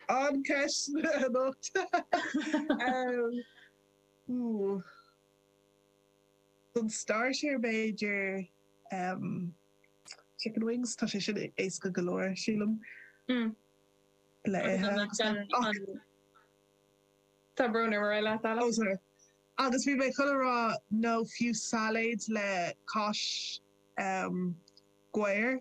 An ceist anois. Ooh. Don starter b'fhéidir chicken wings, tá sé sin éasca go leor sílim. le hithe agus ach. Tá brón orm cur isteach ort Alex. Oh sorry. Agus bhí mé chun a rá nó fiú sailéad le cáis ghabhair.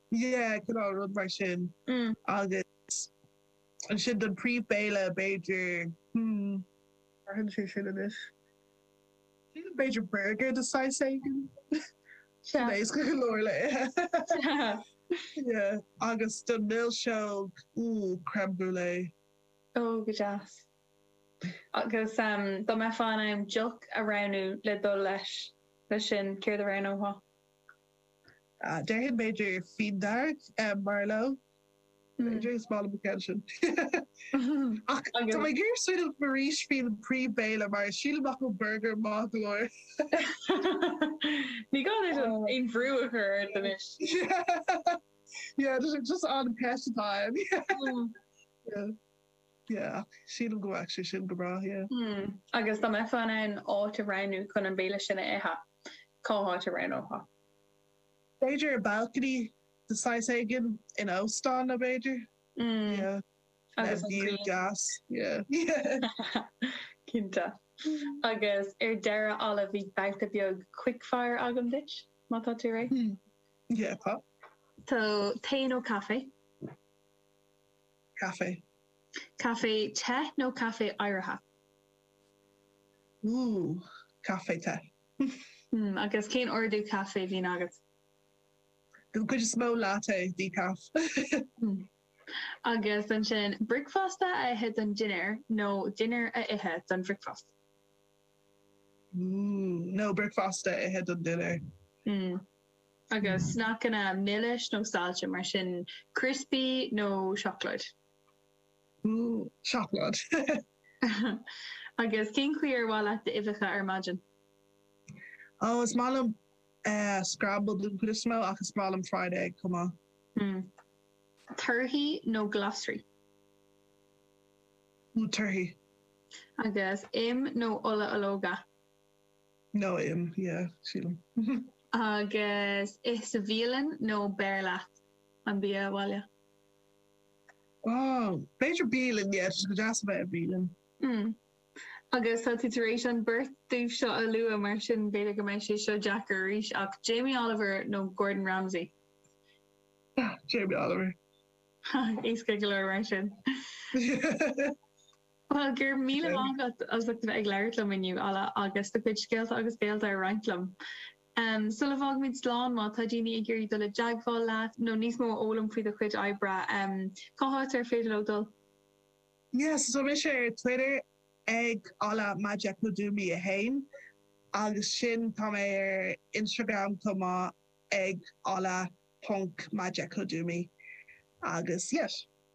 Yeah, cineál rud mar sin. Agus ansin don príomhbhéile, b'fhéidir, hmm, athraíonn sé sin anois. Sílim b'fhéidir burger de shaghas éigin. Sin éasca go leor le ithe. Yeah. Agus don milseog, ooh, crème brûlée. Oh, go deas. Agus dá mbeifeá in ann deoch a roghnú le dul leis, leis sin, céard a roghnófá? Déarfainn b'fhéidir fíon dearg Merlot. B'fhéidir is maith liom an ceann sin. Ach tá mé ag iarraidh smaoineamh arís faoin bpríomhbhéile mar sílim nach bhfuil burger maith go leor. Níl mé ag iarraidh aon bhrú a chur ort anois. Yeah, just an cheist atá ann. Yeah, yeah, ach sílim go bhfuil sé sin go breá, yeah. Agus dá mbeifeá in ann áit a roghnú chun an béile sin a ithe? cá háit a roghnófá. B'fhéidir i balcony de saghas éigin in óstán nó b'fhéidir. Yeah. Agus an cuan. View deas. Yeah. Cinnte. Agus ar deireadh Ella beidh babhta beag quick fire agam duit má tá tú réidh. Yeah, tá. So, tae nó caife? Caife. Caife te nó caife oighrithe? Ooh, caife te. Hmm, agus cén ordú caife a bhíonn agat? Den chuid is mó, latte, decaf. Hmm. Agus ansin, bricfeasta a ithe don dinnéar nó dinnéar a ithe don bhricfeasta? Ooh, no, bricfeasta a ithe don dinnéar. Hmm. Agus sneacanna milis nó saillte, mar sin criospaí nó seacláid? Ooh, seacláid. Agus cén chaoi ar maith leat d'uibheacha ar maidin? Ó, is maith liom scrambled an chuid is mó ach is maith liom fried egg chomh maith. Torthaí nó glasraí? Ooh, torthaí. Agus im nó ola ológa? No, im, yeah, sílim. Agus ith sa bhialann nó beir leat an bia abhaile? Ah, b'fhéidir bialann, yeah, tá sé go deas a bheith i mbialann. Umm. Agus tá tú tar éis an bheirt díobh seo a lua mar sin b'fhéidir go mbeidh sé seo deacair arís ach Jamie Oliver nó Gordon Ramsay? Ah, Jamie Oliver. Ha, éasca go leor mar sin. Bhuel, go raibh míle maith agat as ucht a bheith ag labhairt liom inniu, Ola, agus do chuid scéalta agus bealtaí a roinnt liom. Sula bhfágaimid slán, má tá daoine ag iarraidh dul i dteagmháil leat nó níos mó a fhoghlaim faoi do chuid oibre, cá háit ar féidir leo dul? Yes, tá mise ar Twitter ag Ola Majekodunmi 1, agus sin tá mé ar Instagram chomh maith ag ola.majekodunmi, agus yes.